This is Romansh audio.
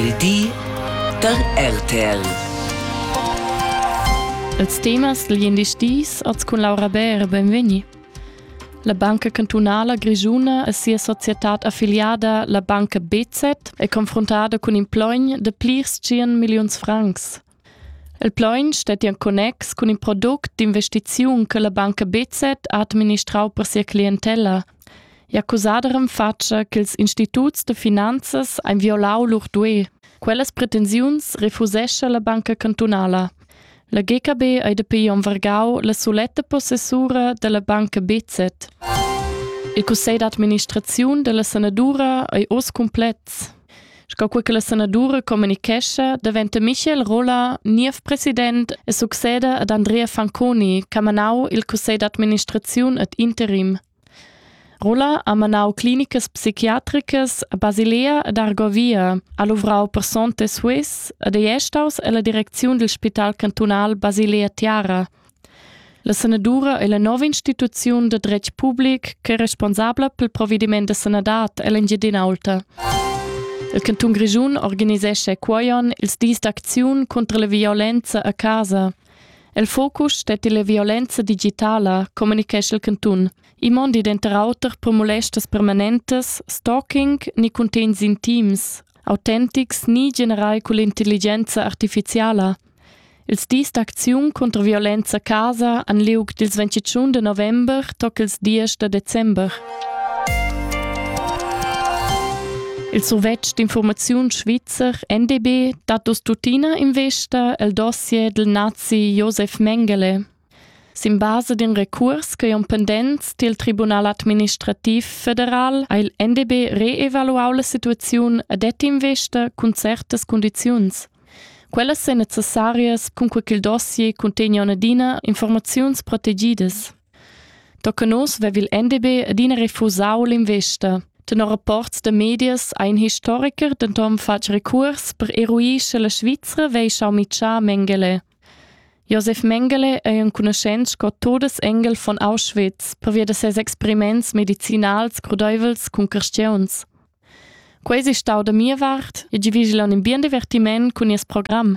Il di da RTL. Els temas gl'indisch dis als cun Laura Bär benvegni. La Banca Cantunala Grigiuna e sia societad affiliada, la Banca BZ, è confrontata cun in plogn de plirs 100 milliuns francs. Il plaun stettia en connex cun in product d'investiziun che la banca BZ ha administrau per sia clientella. Ei ha cusada renfatscha ch'ils instituts da finanzas ein violau lur duei. Quellas pretensiuns refusescha la banca cantunala. La GKB ei dapi onn vargau la suletta possessura dalla banca BZ. Il cussegl d'administraziun dalla sanadura ei oz cumplex. Sco quei che la sanadura communichescha, daventa Michel Rolla niev president e succeda ad Andrea Fanconi, che ha manau il cussegl d'administraziun ad interim. Rolla ha manau clinicas psichiatricas a Basilea ed Argovia, ha luvrau per Sonte Swiss ed ei staus ella direcziun dil spital cantunal Basilea Tiara. La sanadura è la nova instituziun da dretg public ch'è responsabla pel provediment da sanadad ell'Engiadin'Aulta. Il cantun Grischun organisescha quoion ils dis d'acziun contro la violenza a casa. Il focus stetti la violenza digitala, communichescha il cantun. I mondi denter auter per molestas permanentes, stalking ni cuntegns intims, autentics ni generai cull'intelligenza artificiala. Ils dis d'acziun cunter violenza a casa han liug dils ventitschun de november toc ils diesch da december. Il survetsch d'informaziun svizzer NDB dat dus tuttina investa el dossier del nazi Josef Mengele. Sin basa d'in recuors ch'ei on pendents dil Tribunal administrativ federal ha il NDB reevaluau la situaziun e det investa cun certas condiziuns. Quellas ein necessarias cun quei ch'il dossier cuntegna adina informaziuns protegidas. Tocca nos vev il NDB adina refusau l'investa. Tenor rapports da medias ha in historiker denton fatg recuors per eruir sche la Svizra vei schau mitschar Mengele. Josef Mengele ei enconuschent sco Todesengel von Auschwitz pervia da ses experiments medicinals crudeivels cun carstiauns. Quei ei stau da mia vart e divigion in bien divertiment cun nies program.